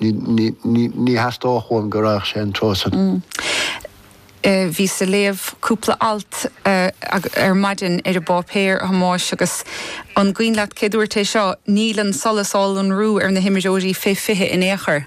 Ní theastódh uaim go raghadh sé an treo san. Bhíos a léamh cúpla alt ar maidin ar an bpáipéar, a Thomáis, agus an cuimhin leat cé dúirt é seo, níl an solas á lonrú ar na himreoirí fé 20 in aon chor.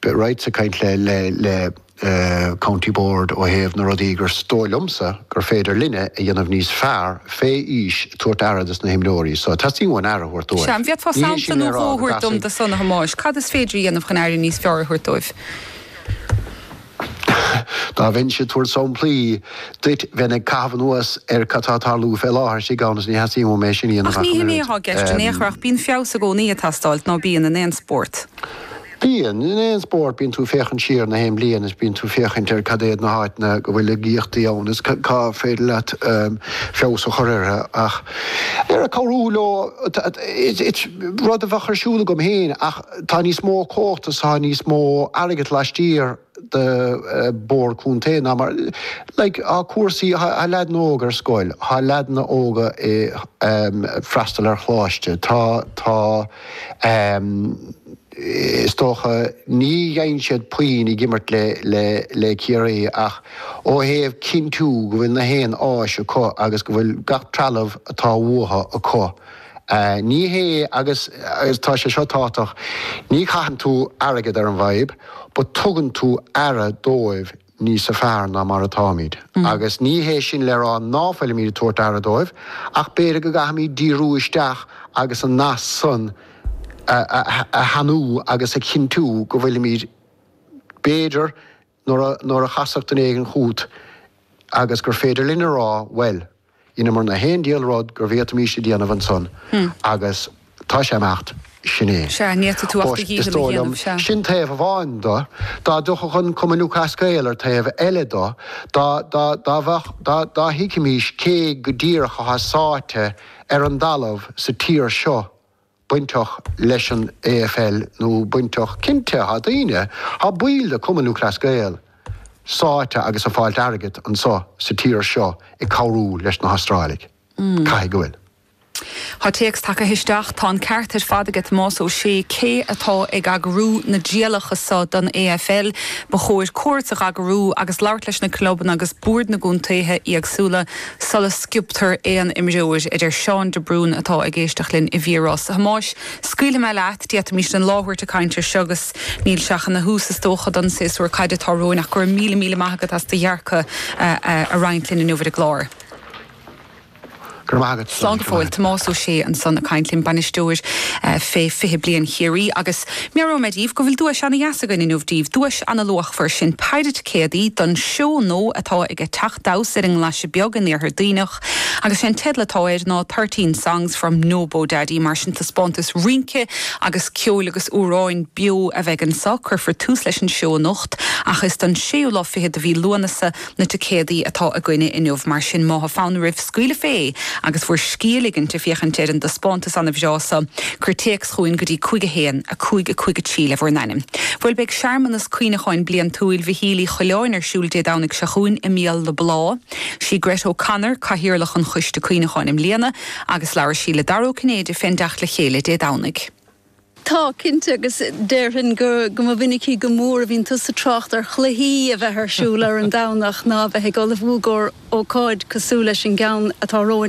Bhíos right ag caint le County Board ó thaobh na rudaí gur dóigh liomsa gur féidir linne a dhéanamh níos fearr fé aois ag tabhairt aire dos na himreoirí so. Teastaíonn uainn aire a thabhairt dóibh. Sea, an bhféadfá sampla nó dhó a thabhairt dom de san a Thomáis? Cad is féidir a dhéanamh chun aire níos fearr a thabhairt dóibh? Dá mbeinnse ag tabhairt samplaí duit, bheinn ag caitheamh anuas ar cad tá ag tarlú fé láthair istigh ann is ní theastaíonn uaim é sin a dhéanamh Ach ní hin é atá i gceist in aon chor ach bíonn feabhas i gcónaí ag teastáil, ná bíonn, in aon spórt. Bíonn. In aon spórt bíonn tú ag féachaint siar na haon bhliain is bíonn tú ag féachaint ar cad iad na háiteanna go bhfuil laigíochtaí ann is cad is féidir leat feabhas a chur orthu ach ar ag cabhrú leo is rud a bheadh ar siúl agam féin ach tá níos mó cumhachta tá níos mó airgead laistiar de Bhord Contae ná mar, like, tá cúrsaí, tá leaideanna óga ar scoil, tá leaideanna óga ag, em, freastal ar choláiste, tá, tá, em, is dócha, ní dheineann siad puinn ag imirt le, le, le Ciarraí ach ó thaobh cinntiú go bhfuil na haon áis acu agus go bhfuil gach trealamh atá uathu acu, Ní hé, agus tá sé seo tábhachtach, ní chaitheann tú airgead ar an bhfadhb, but tugann tú aire dóibh níos fearr ná mar atáimid. Agus ní hé sin le rá ná fuilimid ag tabhairt aire dóibh, ach b'fhéidir go gcaithfimid díriú isteach agus an nasc san a shainiú agus a chinntiú go bhfuilimid b'fhéidir Nuair a chasfadh duine éigin chugat agus gur féidir linn a rá, bhuel, dheineamar na haon diabhal rud go bhféadfaimis a dhéanamh ansan agus tá sé ag imeacht sin é. Sea, ní fhéadfaidh tú ach do dhícheall a dhéanamh, sea. Sin taobh amháin do. Dá dtiocfadh an Cumann Lúthchleas Gael ar taobh eile do, dá, dá, dá bheadh, dá, dá dtuigfimis cé go díreach atá sáite ar an dtalamh sa tír seo, bainteach leis an AFL nó bainteach, cinnte tá daoine, tá baill de Chumann Lúthchleas Gael sáite agus ag fáilt airgead anseo sa tír seo ag cabhrú leis na hAstráiligh. Caithfidh go bhfuil. Tá téacs tagtha isteach, tá an ceart ar fad ag Tomás Ó Sé, cé atá ag eagrú na dtrialacha seo don AFL, ba chóir cuairt a dh'eagrú agus labhairt leis na clubanna agus boird na gcontaetha éagsúla Sula sciobtar aon imreoir, a deir Seán de Brún atá ag éisteacht linn i bhFíorás, a Thomáis, scaoilfidh mé leat, d'fhéadfaimis an lá a thabhairt ag caint air seo agus níl sé ach ina thús is dócha don séasúr caide atá romhainn ach go raibh míle míle maith agat as do dhearcadh a roinnt linn inniu ar an gclár. Go raibh maith agat. Slán go fóill. Tomás Ó Sé ansan ag caint linn, bainisteoir fé fiche bliain Chiarraí agus. Meabhróidh mé díbh go bhfuil duais ana dheas againn inniu díbh, duais ana luachmhar, sin péire ticéadaí don seó nua atá aige Teaċ Damhsa ar an nGlaise Beag in Iarthar Dhuibhneach agus sé an teideal atá air ná Thirteen Songs from Nobodaddy mar sin taispeántas rince agus ceoil agus amhráin beo a bheidh anso, cuirfear tús leis an seó anocht ach is don séú lá fichead de mhí Lúnasa Na ticéadaí atá againne inniu, mar sin, má tá fonn oraibh scaoileadh fé agus bhur scíth a ligint ag féachaint ar an dtaispeántas ana bhreá so. Cuir téacs chugainn go dtí 5 1, 5 5 3 le bhur n-ainm. Bhuel, beidh searmanas cuimhneacháin bliantúil Mhichíl Uí Choileáin ar siúl Dé Domhnaigh seo chugainn i mBéal na Blá. Sí Gret O'Connor cathaoirleach an choiste cuimhneacháin i mbliana agus labhair sí le Dara Ó Cinnéide fén dteacht le chéile Dé Domhnaigh. Tá, cinnte, agus déarfainn go mba mhinicí go mór a bhíonn tusa ag trácht ar chluichí a bheith ar siúl ar an Domhnach ná a bheith ag ullmhú d'ócáid cosúil leis an gceann atá romhainn.